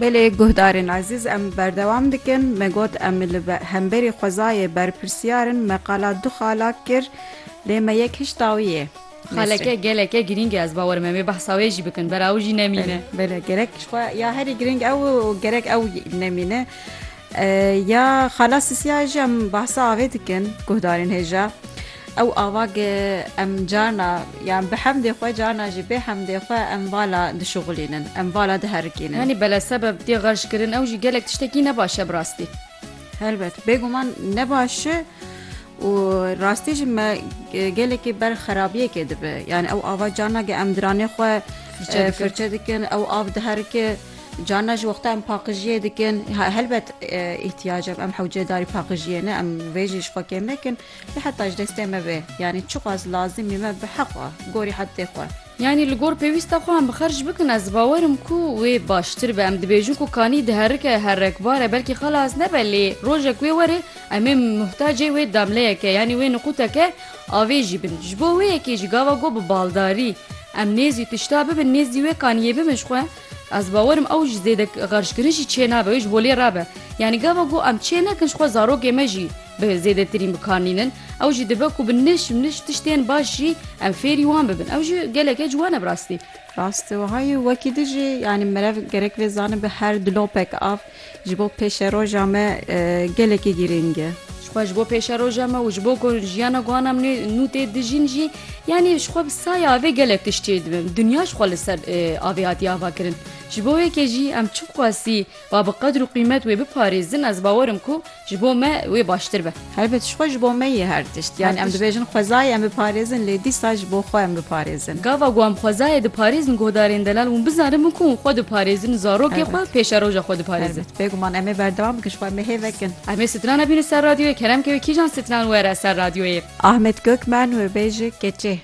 Belê guhdarên ezîz em berdewam dikin me got em li hemberî xwezayê berpirsiyar in me qala du xalak kir lê me yek hişta wî yê. Xaleke geleke girîng e ez bawer me wê behsa wê jî bikin bera ew jî nemîne. Bele gerek xwe ya herî girîng ew gerek ew nemîne. Ya xala Sisiyayê jî em behsa avê dikin guhdarên hêja. Ew ava ke em carna yan bi hemdê xwe carna jî bê hemdê xwe em vala dişuxulînin, em vala diherikînin. Yanî bele sebeb tê xerckirin ew jî gelek tiştekî ne baş e bi rastî. Helbet bêguman ne baş e û rastî jî me gelekî ber xerabiyekê dibe. Yanî ew ava carna ke em diranê xwe firçe dikin ew av diherike Carna ji wexta em paqijiyê dikin helbet îhtiyaca em hewceyê darî paqijiyê ne em vê jî ji xwe kêm nekin lê heta ji destê me bê yanî çiqas lazimî me bi heqa gorî heddê xwe. Yanî li gor pêwîsta xwe em bi xerc bikin ez bawer im ku wê baştir be em dibêjin ku kanî diherike herrekbar e belkî xelas nebe lê rojek wê were em ê muhtacê wê damleyeke yanî wê niqûteke avê jî bin ji bo wê yekê jî gava got bi baldarî em nêzî tişta bibin nêzdî wê kaniyê bimin ji xwe Ez bawer im ew ji zêde xerckirin jî çênabe wê ji bo lê re be. Yanî gava ku em çênekin ji xwe zarokê me jî bi zêdetirîn bikarnînin ew jî dibe ku bi niş niş tiştên baş jî em fêrî wan bibin ew jî geleke ciwan e bi rastî. Rast e wiha ye wekî dijî yanî merev gerek vê zanibe her dilopek av Ji bo pêşeroja me gelekî girîng e. Xwe ji bo pêşeroja me û ji bo ku jiyana guhan em nû tê dijîn jî yanî ji xwe bi saya avê gelek tişt çê dibin. Dinya ji xwe li ser avê hatiye avakirin. Ji bo wê yekê jî em çi qasî ba bi qedr û qîmet wê biparêzin ez bawer im ku Ji bo me wê baştir be. Helbet jixwe ji bo me ye her tişt. Yanî em dibêjin xwezayê em biparêzin lê dîsa ji bo xwe em biparêzin. Gava ku em xwezayê diparêzin guhdarên delal hûn bizanimin ku hûn xwe diparêzin, zarokê xwe, pêşeroja xwe diparêzin. Helbet. Bêguman em ê berdewam bikin ji xwe em ê hêvek in. Em ê strana bînin ser radyoyê. Kerem ke wê kîjan stran were ser radyoyê. Ahmet Gökmen wê bêje keçê.